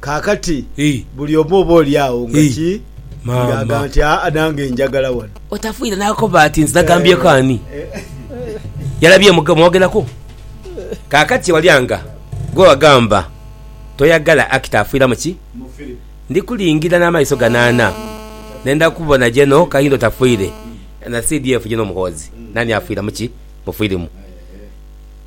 Kaakati, buli omu oba oli agho nga ki, nga agamba nti, Aa, nange njagala wano. Otafiire n'akoba ati, Nze nagambyeku ani? Yalabye mu mwogeraku. Kaakati, wali anga gwe wagamba, Toyagala Akita afiira mu ki? Ndi kulingira n'amaiso gano ana, nenda kukubona Geno Kahinda otafiire, na CDF Geno Muhoozi. Naani afiira mu ki? Mu firimu.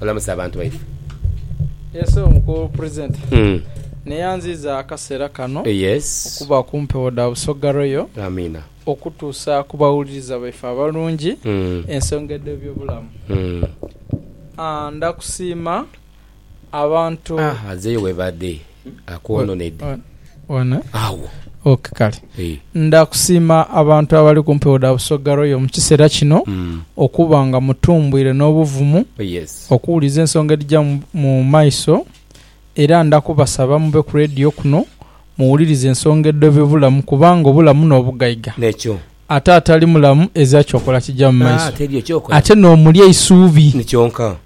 Olamuse abantu baife. Ese omu ku presenter neyanziiza akaseera kano okuba ku mpewo dha Busoga Royal okutuusa ku bawuliriza baife abalungi ensonga edh'ebyobulamu. Ndha kusiima abantu. Azeeyo webaadhe. Akwononedde One. agho. Ok kale. Eeh. Ndha kusiima abantu abali ku mpewo dha Busoga Royal mu kiseera kino okuba nga mutumbwire n'obuvumu Yes. okuwuliza ensonga edhija mu mu maiso era ndha kubasaba mube ku leediyo kuno muwulirize ensonga edhoba ebulamu kubanga obulamu n'obugaiga. Nekyo. Ate atali mulamu ezira kyokola kija mu Ah, maiso. teri ekyokola. Ate n'omuli eisuubi. Ni kyonka.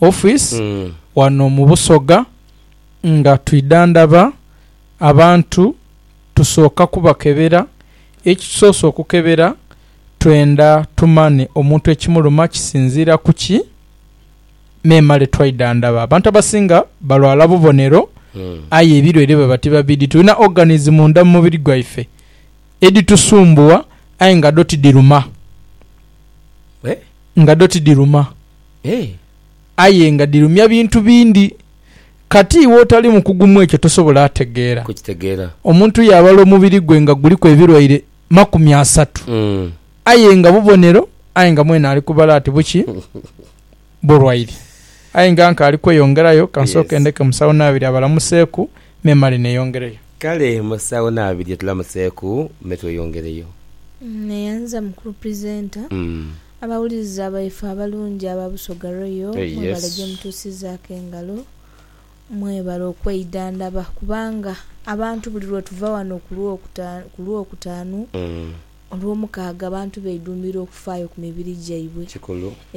office wano mu Busoga nga twidhandhaba abantu tusooka kubakebera, ekitusoose okukebera twenda tumanhe omuntu ekimuluma kisinziira ku ki memale twaidhandhaba. Abantu abasinga balwala bubonero aye ebilwaire baba tibabidhi. Tulina organs munda mu mubiri gwaife edhitusumbuwa aye nga dho tidhiruma. Nga dho tidhiruma. Aye nga dhirumya bintu bindi. Kati iwe otali mukugu mu ekyo tosobola ategeera. Omuntu yaabala omubiri gwe nga guliku ebirwaire makumi asatu, aye nga bubonero, aye nga mwene ali kubala ati buki? Bulwaire. Aye nga nka ali kweyongerayo, ka nsooke ndeke Musawo Naabirye abalamuseeku, me male neeyongereyo. Kale Musawo Naabirye tulamuseeku me tweyongereyo. Neyanza Mukulu Presenter Abawuliriza baife abalungi aba Busoga Royal mwebale gyemutuusizaaku engalo, mwebale okweidhandhaba kubanga abantu buli lwetuva wano ku Lwokutaanu, Olwomukaaga abantu beidhumbira okufaayo ku mibiri gyaibwe.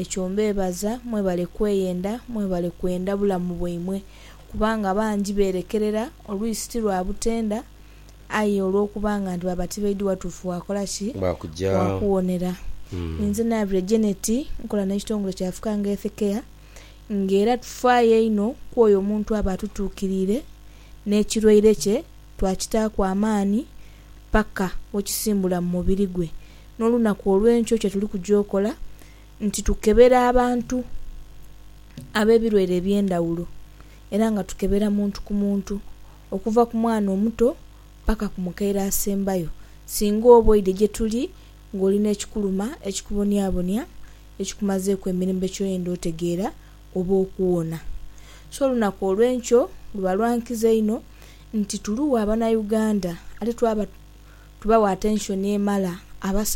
Ekyo mbeebaza, mwebale kweyenda, mwebale kwenda bulamu bwaimwe kubanga bangi beerekerera, olwisi ti lwa butenda. aye olw'okuba nga ndiba batibaidhi watuufu waakola ki? Waakuwonera. Inze naabire Janet, nkola n'ekitongole kya Africa Health Care, ng'era tufaayo einho ku oyo omuntu aba atutuukiriire n'ekirwaire kye twakitaaku amaani paka we kisimbula mu mubiri gwe. N'olunaku olw'enkyo kye tuli kuja okola nti tukebera abantu ab'ebirwaire eby'endhawulo era nga tukebera muntu ku muntu okuva ku mwana omuto paka ku mukaire asembayo, singa oba oidhe gye tuli ng'oli n'ekikuluma ekikubonyabonya ekikumazeeku emirembe ky'oyenda otegeera oba okuwona. So olunaku olw'enkyo luba lwa nkizo inho nti tuluwa Banauganda ate twaba tubawa atenshoni emala. Abasawo.